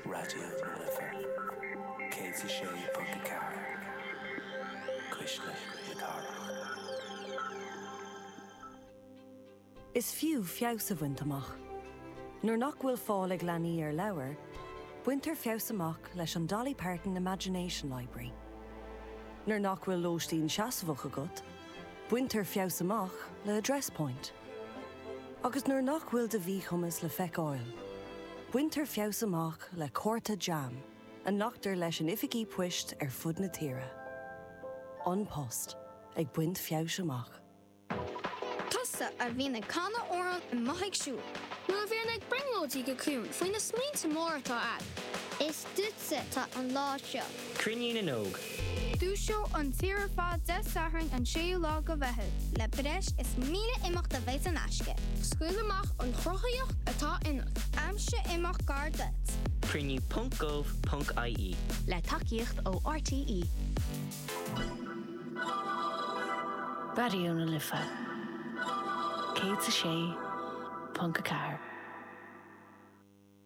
Raidió na Life 106.4 Cuisneach na Cathrach. Is fiú feabhas a bhaint amach. Nuair nach bhfuil fáil ag leanaí ar leabhair, baintear feabhas amach leis an Dolly Parton Imagination Library. Nuair nach bhfuil lóistín seasmhach agat, baintear feabhas amach le Address Point. Agus nuair nach bhfuil do mhíchumas le feiceáil, baintear feabhas amach le cárta jam a nglactar leis in oifigí poist ar fud na tíre. An Post, ag baint feabhais amach. Tusa a bhíonn ag canadh amhráin amuigh ag siúl. Nó a bhíonn ag brionglóidí go ciúin faoi na smaointe móra atá ann. Is duitse atá an lá seo. Cruinniú na nÓg. Dúiseoidh an tír ar fad Dé Sathairn an 6ú lá de Mheitheamh. le breis is 1,000 imeacht a bheidh saor in aisce. Scaoil amach an chruthaitheacht atá ionat. Aimsigh imeacht gar duit. Cruinniú ponc gov ponc ie. le tacaíocht ó RTÉ. Raidió na Life 106.4.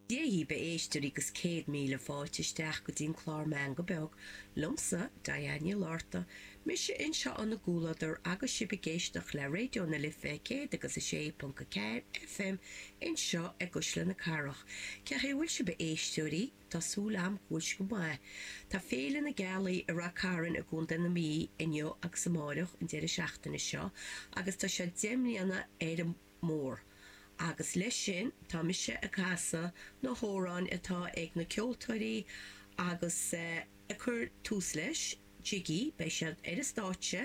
Dé bhur mbeatha a éisteoirí agus céad míle fáilte isteach go dtí an clár Meangadh Beag, liomsa, Diane Ní Lorta, mise anseo in bhur gcomhluadar agus sibh ag éisteacht le Raidió na Life céad agus a sé ponc a ceathair FM anseo i gCuisle na Cathrach. Cén chaoi a bhfuil sibh a éisteoirí? Tá súil agam go bhfuil sibh go maith. Tá Féile na Gealaí i Ráth Chairn i gContae na Mí inniu agus amáireach, an deireadh seachtaine seo, agus tá sé deich mbliana ar an Mór. Agus leis sin, tá mise ag casadh na hamhráin atá ag na ceoltóirí agus ag cur tús leis, Jiggy, beidh siad ar an stáitse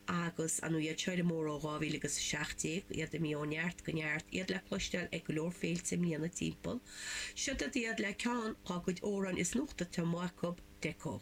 agus an hit sciar mór ó 2017, iad ag imeacht ó neart go neart, iad le cloisteáil ag go leor féilte i mbliana timpeall. Siod iad le ceann dhá gcuid amhrán is nuachta atá amuigh acu, Deco.